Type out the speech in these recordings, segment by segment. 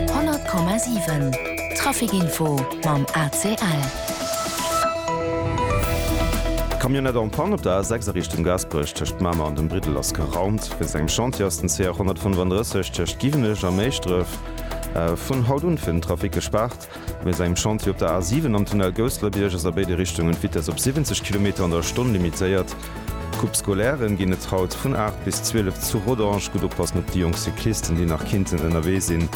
100,7 Traficinfo mam ACL. Camionnette en panne op der A6 a Richtung Gaasperech, tëscht Mamer an dem Briddel ass geraumt. Wéinst engem Chantier ass den CR 135 tëscht Giwenech a Méischdref vun haut un fir den Trafic gespaart. Mir si um Chantier op der A 7 am Tunnel Gousselerbierg. Ass a béide Richtungen d'Vitess op 70 Kilometer an der Stonn limitéiert. D'Coupe Scolaire ginn et haut vun 8 bis 12 zu Rodange. Gutt oppassen op déi jonk Cyclisten, déi nach kinnten ënnerwee sinn.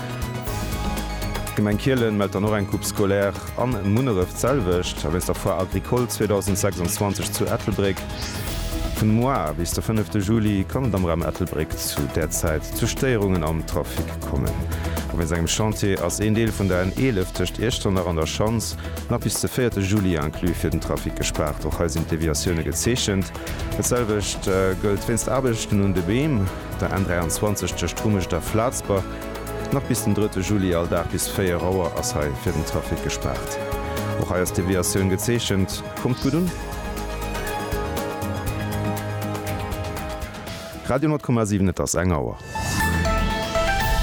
D'Gemeng Kielen mellt dann och eng Coupe Scolaire an Munneref d'selwecht a wéinst der Foire Agricole 2026 zu Ettelbréck. Vun moar bis de 5 de Juli kann et am Raum Ettelbréck zu där Zäit zu Stéierungen am Trafic. kommen. A wéinst engem Chantier ass een Deel vun der N11 tëscht Iechternach an der Schanz nach bis de 4 te Juli inclus fir den Trafic gespaart. Och hei sinn d'Deviatioune gezeechent. Dat selwecht gëllt wéinst Aarbechten un de Beem, der N23 tëscht Rumescht a Flatzber. Nach bis den 3 te Juli all Dag bis 4 Auer ass hei fir den Trafic gespaart. Och hei ass d'Deviatioun gezeechent. Kommt gutt un! Radio 10,7 Et ass eng Auer.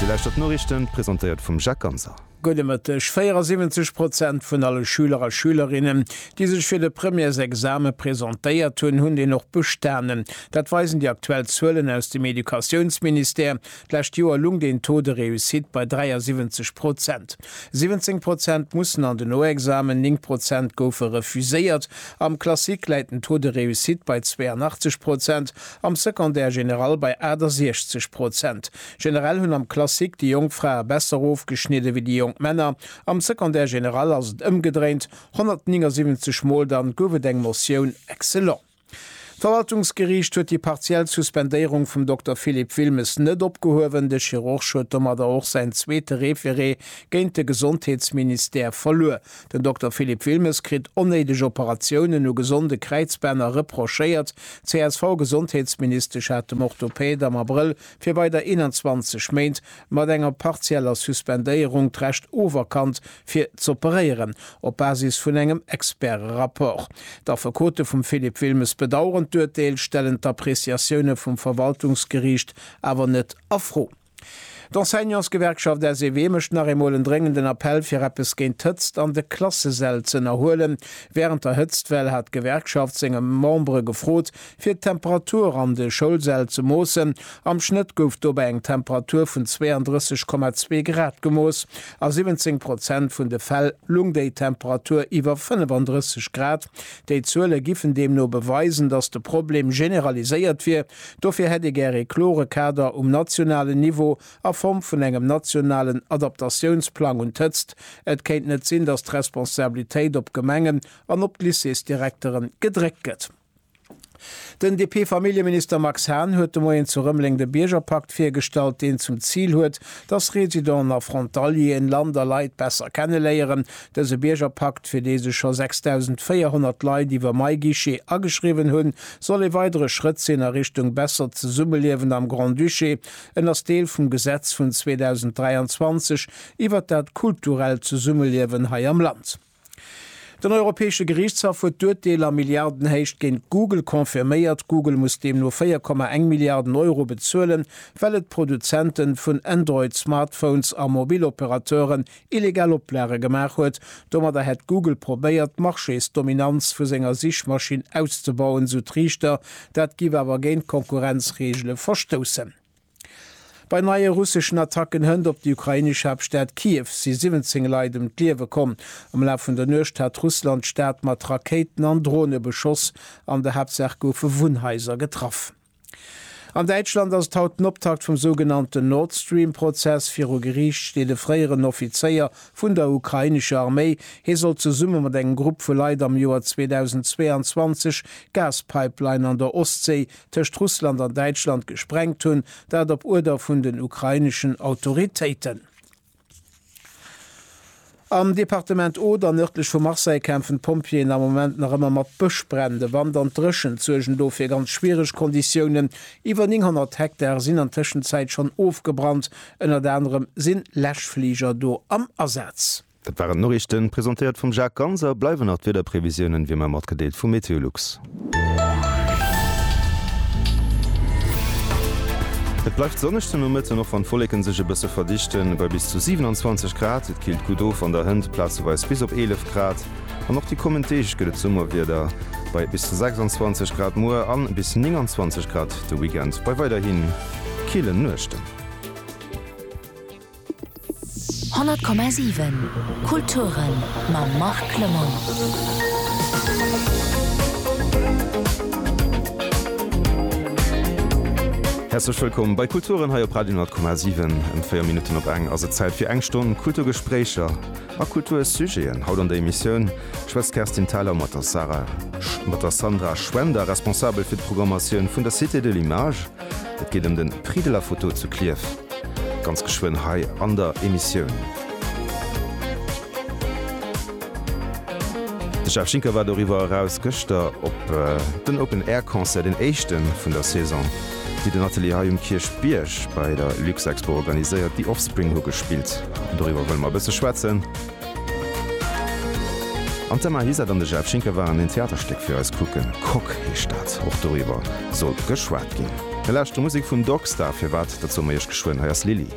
Dir lauschtert d'Noriichten, presentéiert vum Jacques Ganser. Gudde Mëtteg. 74 Prozent vun alle Schüler a Schülerinnen, déi sech fir de Premièresexame presentéiert hunn, hunn deen och bestanen. Dat weisen déi aktuell Zuelen aus dem Educatiounsministère. D'lescht Joer lung den Taux de réussite bei 73 Prozent. 17 Prozent mussen an den Noexamen, 9 Prozent goufe refuséiert. Am Classique läit den Taux de réussite bei 82 Prozent, am Secondaire général bei 68 Prozent. Generell hunn am Classique déi jonk Frae besser ofgeschnidde wéi déi jonk Männer. Am Secondaire général ass et ëmgedréint, 179 Mol dann gouf et eng Motioun excellent. D'Verwaltungsgeriicht huet déi partiell Suspendéierung vum Dokter Philippe Wilmes net opgehuewen. De Chirurg huet domadder och säin zweete Referé géint de Gesondheetsministère verluer. Den Dokter Philippe Wilmes kritt onnéideg Operatiounen u gesonde Kräizbänner reprochéiert. D'CSV-Gesondheetsministesch hat dem Orthopäd am Abrëll fir weider 21 Méint mat enger partieller Suspendéierung d'Recht oferkannt, fir z'operéieren, op Basis vun engem Experte-Rapport. D'Affekote vum Philippe Wilmes bedaueren d'Urteel, stellen d'Appreciatioune vum Verwaltungsgeriicht awer net a Fro. D'Enseignantsgewerkschaft SEW mécht nach eemol en dréngenden Appell, fir eppes géint d'Hëtzt an de Klassesäll z'ënnerhuelen. Wärend der Hëtztwell hat d'Gewerkschaft senge Membere gefrot, Fir d'Temperatur an de Schoulsäll ze moossen. Am Schnëtt gouf dobäi eng Temperatur vun 32,2 Grad gemooss. A 17 Prozent vun de Fäll lung déi Temperatur iwwer 35 Grad. Déi Zuele giffen deemno beweisen, datt de Problem generaliséiert wier. Dofir hätt ee gär ee klore Kader um nationalen Niveau a Form vun engem nationalen Adaptatiounsplang un d'Hëtzt. Et kéint net sinn, datt d'Responsabilitéit op d'Gemengen an op d'Lycéesdirekteren gedréckt gëtt. Den DP-Familljeminister Max Hahn huet de Moien zu Rëmeleng de Biergerpakt virgestallt, deen zum Zil huet, dass Residenten a Frontalieren Land a Leit besser kenneléieren. Dëse Biergerpakt, fir dee sech scho 6.400 Leit iwwer MyGuichet ageschriwwen hunn, soll ee weidere Schrëtt sinn a Richtung bessert Zesummeliewen am Grand-Duché. En ass Deel vum Gesetz vun 2023 iwwert dat kulturellt Zesummeliewen hei am Land. Den Europäesche Geriichtshaff huet d'Urteel a Milliardenhéicht géint Google confirméiert. Google muss deemno 4,1 Milliarden Euro bezuelen, well et Produzente vun Android-Smartphones a Mobilopérateuren illegal Oplage gemaach huet. Domadder hätt Google probéiert, d'Marchésdominanz vu senger Sichmaschinn auszebauen, sou d'Riichter. Dat géif awer géint d'Konkurrenzreegele verstoussen. Bei neie russeschen Attacken hënt op déi ukrainesch Haaptstad Kiew si 17 Leit ëm d'Liewe komm. Am Laf vun der Nuecht hat Russland d'Stad mat Rakéiten an Drone beschoss. An der Haaptsaach goufe Wunnhaiser getraff. An Däitschland ass et haut den Optakt vum sougenannten Nord Stream Prozess. Viru Geriicht steet e fréieren Offizéier vun der ukrainescher Arméi. Hie soll zesumme mat engem Grupp vu Leit am Joer 2022 d'Gaspipeline an der Ostséi tëscht Russland an Däitschland gesprengt hunn, dat op Uerder vun den ukraineschen Autoritéiten. Am Departement Oder, nërdlech vu Marseille, kämpfen d'Pompjeeën am Moment nach ëmmer mat Bëschbränn. De Wand an d'Dréchent suergen do fir ganz schwiereg Konditiounen. Iwwer 900 Hektar sinn an Tëschenzäit schonn ofgebrannt. Ënnert anerem si Läschfliger do am Asaz. Dat waren d'Noriichten, presentéiert vum Jacques Ganz. A bleiwen nach d'Wiederprevisiounen, wéi mer matgedeelt vu Meteolux. Et bleift sonneg den Nomëtten, och wann d'Wolleken sech e bësse verdichten. Bei bis zu 27 Grad, et killt gutt of an der Hënt, plazeweis bis op 11 Grad. An och déi kommend Deeg gëtt et Summerwieder, bei bis zu 26 Grad muer a bis 29 Grad de Weekend, bei weiderhi killen Nuechten. 100,7 Kulturen mam Marc Lemaire. Häerzlech wëllkomm bei Kulturen hei op Radio 100,7. Em 4 Minutten op eng ass et Zäit fir eng Stonn Kulturgespréicher a Kultursujeten. Haut an der Emissioun schwätzt d'Kerstin Thalau mat der Sarah, mat der Sandra Schwender, Responsabel fir d'Programmatioun vun der Cité de l'Image, Et geet ëm den Prix de la photo zu Klierf, ganz geschwënn hei an der Emissioun. De Jeff Schinker war doriwwer eraus gëschter op den Open Air Concert, den éischten vun der Saison, déi den Atelier hei um Kierchbierg bei der Luxexpo organiséiert. The Offspring hu gespillt an doriwwer wëlle mer e bësse schwätzen. An d'Emma Ihisatt an de Jeff Schinker waren een Theaterstéck fir eis kucken. Coque heescht dat. Och doriwwer soll geschwat ginn. Mir lauschtere Musek vum Dogstar. Firwat, dat soe mer iech geschwënn. Hei ass Lili.